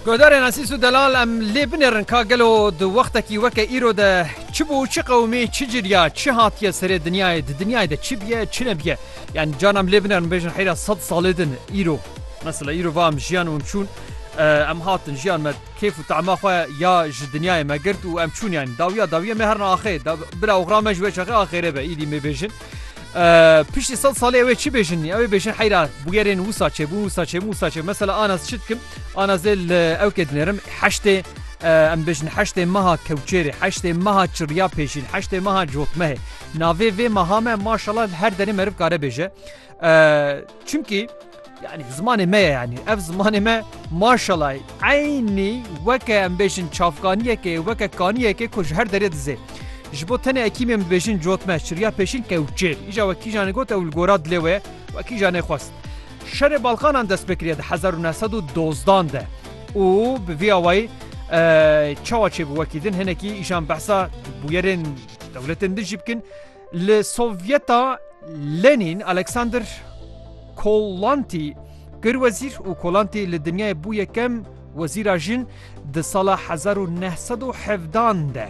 Guhdarên Esîs û Delal em lê binêrin ka gelo di wextekî weke îro de çi bû, çi qewimî, çi ciliya, çi hatiye serê dinyayê, di dinyayê de çi biye, çi nebiye. Yanî carna em lê binêrin bêjin heyra sed salê din îro. Mesela îro va em jiyan û em çûn, em hatin jiyan me kêf û tema xwe ya ji dinyayê me girt û em çûn yanî. Dawiya dawiya me herna axê, bila oxira me ji wê çaxê axêrê be, îdî mêbêjin. Piştî sed salê ew ê çi bêjin ew ê bêjin heyra bûgerên wisa çêbûn wisa çêbûn wisa çê mesela anas çi dikim anazê li ew kê dinêrim heştê em bêjin heştê meha kewçêrê heştê meha çirya pêşîn heştê meha cotmehê navê vê meha me maşala her derê meriv kare bêje Çimkî yanî zimanê me ye yanî ev zimanê me maşalayî eynî weke em bêjin çavkaniyekê weke kaniyekê ku ji her derê dizê. Ji bo tenê ekîmê min bêjin cotme çiriya pêşîn kewçêr. Îja we kîjanê got ew li gora dilê wê we kîjanê xwest. Şerê Balkanan dest pê kiriye di hezar û neh sed û dozdan de û bi vî awayî çawa çêbû wekî din hinekî îjan behsa bûyerên dewletên din jî bikin. Li Sovyeta Lenîn Alexander Kolantî kir wezîr û Kolantî li dinyayê bû yekem wezîra jin di sala hezar û neh sed û hevdan de.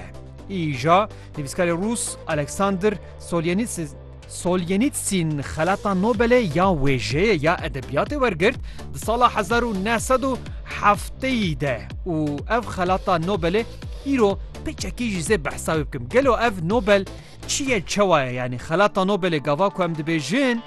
Îja nivîskarê rûs Alexander Solyenitsin Solyenitsin xelata Nobelê ya wêjeyê ya edebiyatê wergirt di sala hezar û neh sed û hefteyî de û ev xelata Nobelê îro pêçekî jî zê behsa wê bikim gelo ev Nobel Çi ye çewa ye yanî xelata Nobelê gava ku em dibêjin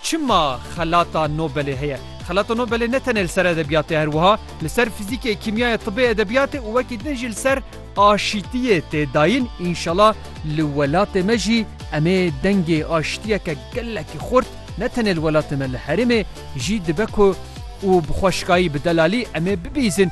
çima xelata Nobelê heye. Xelata Nobelê ne tenê li ser edebiyatê her wiha li ser fizîkê, kîmyayê, tibê, edebiyatê û wekî din jî li ser aşîtiyê tê dayin. Înşela li welatê me jî em ê dengê aşitiyeke gelekî xurt ne tenê li welatê me li herêmê jî dibe ku û bi xweşikayî bi delalî em ê bibîzin.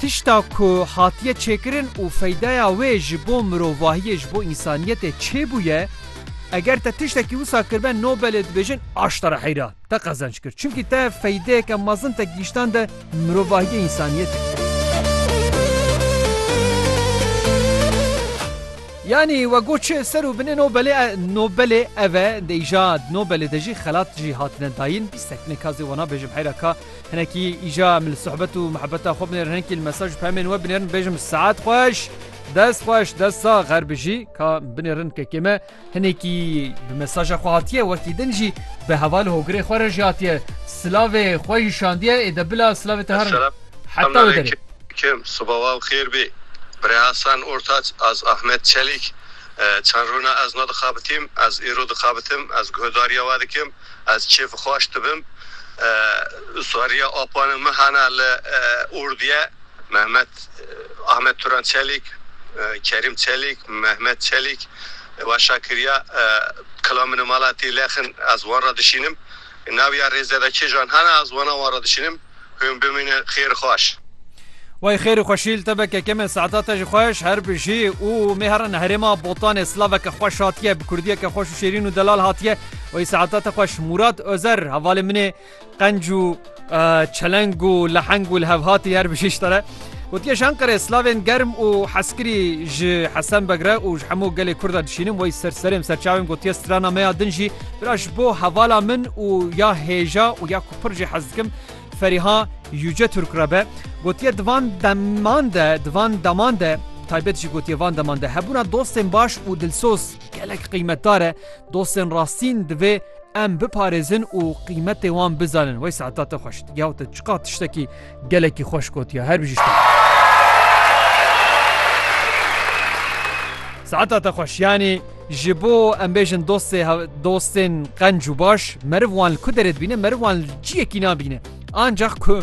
Tişta ku hatiye çêkirin û feydeya wê ji bo mirovahiyê, ji bo însaniyetê çê bûye, eger te tiştekî wisa kiribe Nobelê dibêjin aşta re heyra te qezenc kir. Çimkî te feydeyeke mezin te gihîştande mirovahiyê însaniyetê. Yanî we got çi ser û binê Nobelê e Nobelê ev e dê îja Nobelê de jî xelat jî hatine dayîn bîstek nêka zê wana bêjim heyra ka Hinekî îja min li sohbet û mihebeta xwe binêrin hinekî li mesaj û pemên we binêrin bêjim saet xweş, dest xweş, dest sax xer bijî ka binêrin kekê me hinekî bi mesaja xwe hatiye wekî din jî bi heval hogirê xwe re jî hatiye silavê xwe jî şandiye ê de bila silavê te herin heta wê derê. Kim sibawaw xêr bê Birê Hasan Ortaç az Ahmet Çelîk çend rûna ez ne dixabitîm ez îro dixabitim ez guhedariya we dikim Ez çê vixwaş dibim Usariya Apanê min hene li Ordiye, Mehmet Ahmet Turan Çelîk, Kerîm Çelîk, Mehmet Çelîk weşa kiriya kila min mala tê lexin ez wan re dişînim. Nawiya rêzede kêjan hene ez wana wan re dişînim. Hûn bimînin xêr xweş. Way xêrî xweşîl te be keke me saeta te jî xweş her bijî û mêhera ne herêma botanê slaveke xweş hatiye bi kurdiyeke xweş û şêrîn û delal hatiye way saeta te xweş Mûrat Ozer hevalê min ê qenc û çeleng û leheng û li hev hatî her bijî ji te re gotiye ji Enqerê slavên germ û heskirî ji Hesen Beg re û ji hemû gelê Kurd re dişînim way ser serê serçavên gotiye strana me ya din jî bira ji bo hevala min û ya hêja û ya pir jî hez dikim Feriha Yüce Türk re be gotiye di van deman de di van deman de taybet jî gotiye van deman de hebûna dostên baş û dilsoz gelek qîmetdar e dostên rastîn divê em biparêzin û qîmetê wan bizanin wey saeta te xweşt gew te çiqa tiştekî Gelekî xweş gotiye her bijî şte. Saeta te xweş yanî ji bo em bêjin dostê dostên qenc û baş meriv wan li ku derê dibîne meriv wan ciyekî nabîne ancaq ku